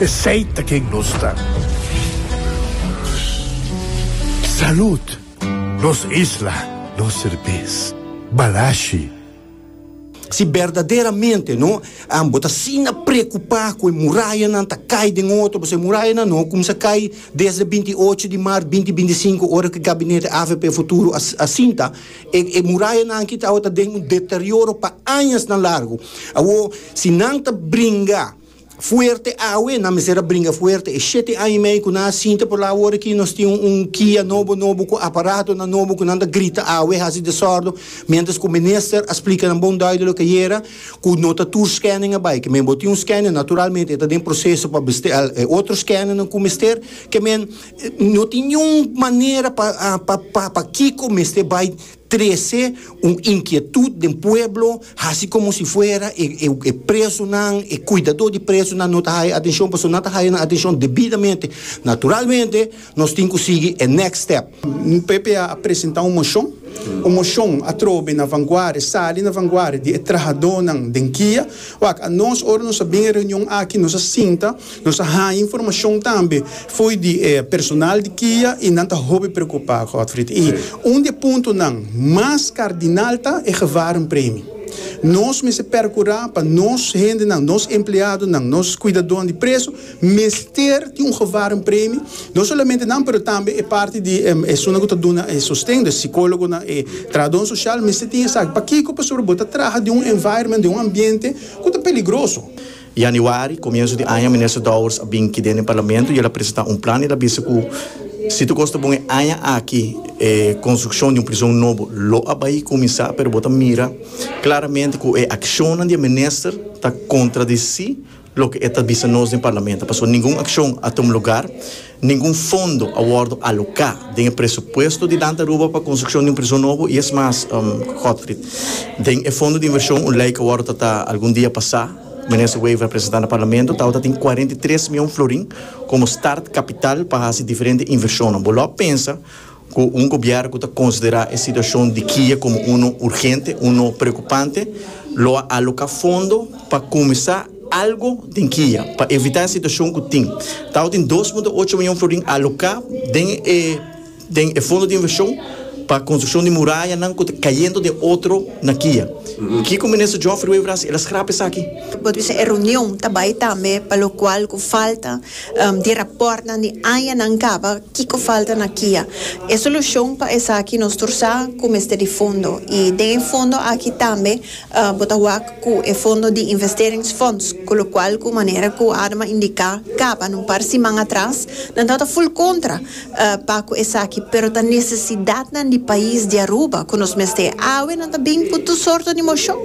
Esey ta ken nos ta. Salud! Nos isla, nos serbes. Balashi. Si berdaderamente no bo ta asina preocupa cu e murayanan ta cay den otro, pasobra e murayanan no cuminsa cay desde e binti ocho di maart binti binti cinco ora cu e gabinete AVP Futuro a sinta, e murayanan aki ta den un deterioro pa añasnan largo. Awor, si nan ta bringa. fuerte awe, nan mester a bringa fuerte. E shete aña i mei ku nan a sinta por la awor aki, nos tin un kia nobo nobo ku aparatonan nobo ku nan ta grita awe, hasi desòrdo, miéntras ku minister a splika nan bon dùido loke ayera ku no ta tur skèning a bai. Kemen bo tin un skèning, naturalmente e ta den proseso pa besteá e otro skèningnan ku mester. Kemen no tin niun manera pa pa pa kiko mester bai. trece un inkietud den pueblo hasi komo si fuera e presonan e kuidadó di presonan no ta haya atenshon pasobra nan ta haya nan atenshon debidamente naturalmente nos tin ku sigui e next step. Ppa a presentá un moshon un moshon atrobe na vanguardia sali na vanguardia di e trahadónan den kia wak a nos ora nos a bin e reunion aki nos a sinta. Nos a haña informashon tambe fo'i di e personal di kia i nan ta hopi preokupá, Godfried. I un di e puntonan mas kardinal ta e gevarenpremi. Nos mester perkurá pa nos hendenan, nos empleadonan, nos kuidadonan di preso mester tin un gevarenpremi, no solamente nan pero tambe e parti di e esunnan ku ta duna e sosten, e sikólogonan, e trahadónan sosial mester tin esaki. Pakiko? Pasobra bo ta traha den un environment, den un ambiente ku ta peligroso. Yanüari, komiensu di aña, Minister Dowers a bin ki den e Parlamento i el a presentá un plan i el a bisa ku si tur kos ta bon e aña aki e konstrukshon di un prison nobo lo a bai kuminsá, pero bo ta mira klaramente ku e akshonnan di e minister ta kontradisí loke e ta bisa nos den Parlamento pasobra ningun akshon a tuma lugar. Ningun fondo a wòrdu aloká den e presupuesto di Danta Aruba pa konstrukshon di un prison nobo i es mas, Godfried. Den e fondo di invershon un lei ku a wòrdu tratá algun dia pasá, Minister Wever a presentá na Parlamento, tabata tin kuarenta i tres mion florin komo start kapital pa hasi diferente invershonnan. Bo lo a pensa Cu un gobierno cu ta considera e situacion di Kiye como uno urgente, uno preocupante, lo a aloca fondo pa cuminsa algo den Kiye pa evita e situacion cu tin. Tawata tin dos punto ocho miyon florin aloca den e den e fondo di inversion pa construccion di murayanan cu ta cayendo den otro na Kiye. Kico Minister Geoffrey Wever a haci? El a scrap esaki. Bo ta bisa e reunion ta bay tambe pa locual cu falta di rapòrtnan di añanan kaba kiko falta na kia e solushon pa esaki nos tur sa ku mester di fondo i den e fondo aki tambe bo ta wak ku e fondo di investeringsfonds ku lokual ku manera ku Adma indiká kaba na un par siman atras nan tabata ful kontra pa cu esaki, pero ta necesidadnan di pais di Aruba cu nos mester e awe. Nan ta bin cu tur sorto di mocion,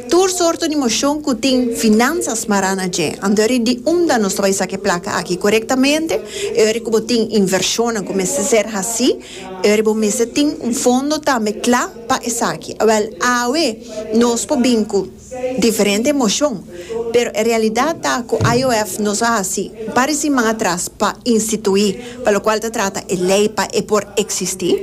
tur sorto di mocion cu tin finansa smará na dje. Anto eri di unda nos ta bay saca e placa aki corectamente? E ora cu bo tin inversionnan cu mester ser haci, e ora bo mester tin un fondo tambe cla pa esaki. Awel, awe nos por bin cu. diferente emoshon, pero e realidat ta ku IOF nos a hasi un par di siman atras pa instituí pa lo kual ta trata e lei pa e por eksistí,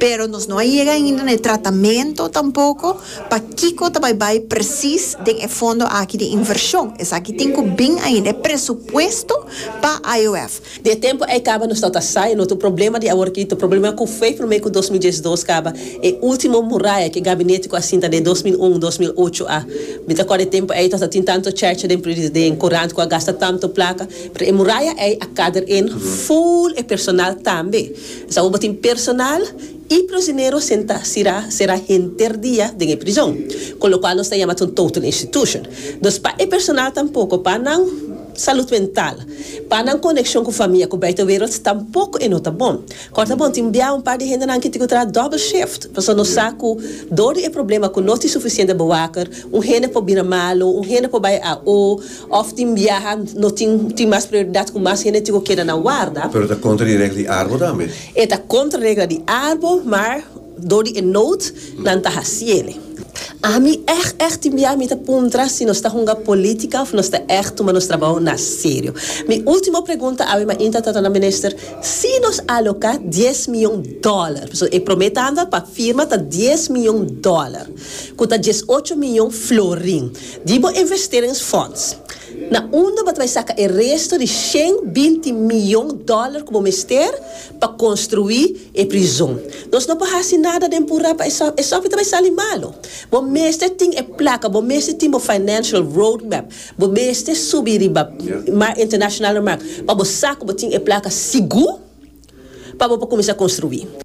pero nos no a yega ainda na e tratamentu tampoko pa kiko ta bai bai presis den e fondo aki di invershon, esaki tin ku bin ainda e presupuesto pa IOF. Di e tempu ei kaba nos no ta sai, no tin problema di awor kito, problema ku fei promé ku dos mil diesdos kaba, e ultimo muraya ku e gabinete ku a sinta den dos mil un, dos mil ocho a. Mi ta kòrda e tempu ei no ta tin tantu chèrcha den pri den kurant ku a gasta tantu plaka, pero e muraya ei a kader in full e personal tambe. Esei awor bo tin personal i prisionero sentá sirá será henter dia den e prizon, ku lokual nos ta yama ta un total institution. Dus pa e personal tampoko pa nan. Salud mental. Pa nan konekshon ku famia ku buitenwereld tampoko e no ta bon. Kòrta bon tin bia un par di hendenan ki tin ku traha dòbel shift, pasobra nos sa ku dor di e problema ku no tin sufisiente bewaker, un hende por bira malu, un hende por bai AO, òf tin biaha no tin tin mas prioridat ku mas hende tin ku keda na warda. Pero ta kontra di regla di arbo tambe. E ta kontra regla di arbo, maar. Dor di e nood nan ta haciele. Ami echt echt tin bia mi ta puntra si nos ta hunga politica of nos ta echt tuma nos trabao na serio. Mi ultimo pregunta awe mainta ta na minister, si nos aloca dies miyon dollar, pasobra e prome tanda pa firma ta dies miyon dollar, cu ta dies ocho miyon florin, di bo investerings fonds, na unda bo ta bay saca e resto di shen binti miyon dollar cu bo mester Pa construi e prizon. Nos no por haci nada den pura pa e sof, e sof e ta bay sali malo. Bo mester tin e placa, bo mester tin bo financial road map, bo mester subi riba mar internacional na mar pa bo sa cu bo tin e placa sigur pa bo por cuminsa construi.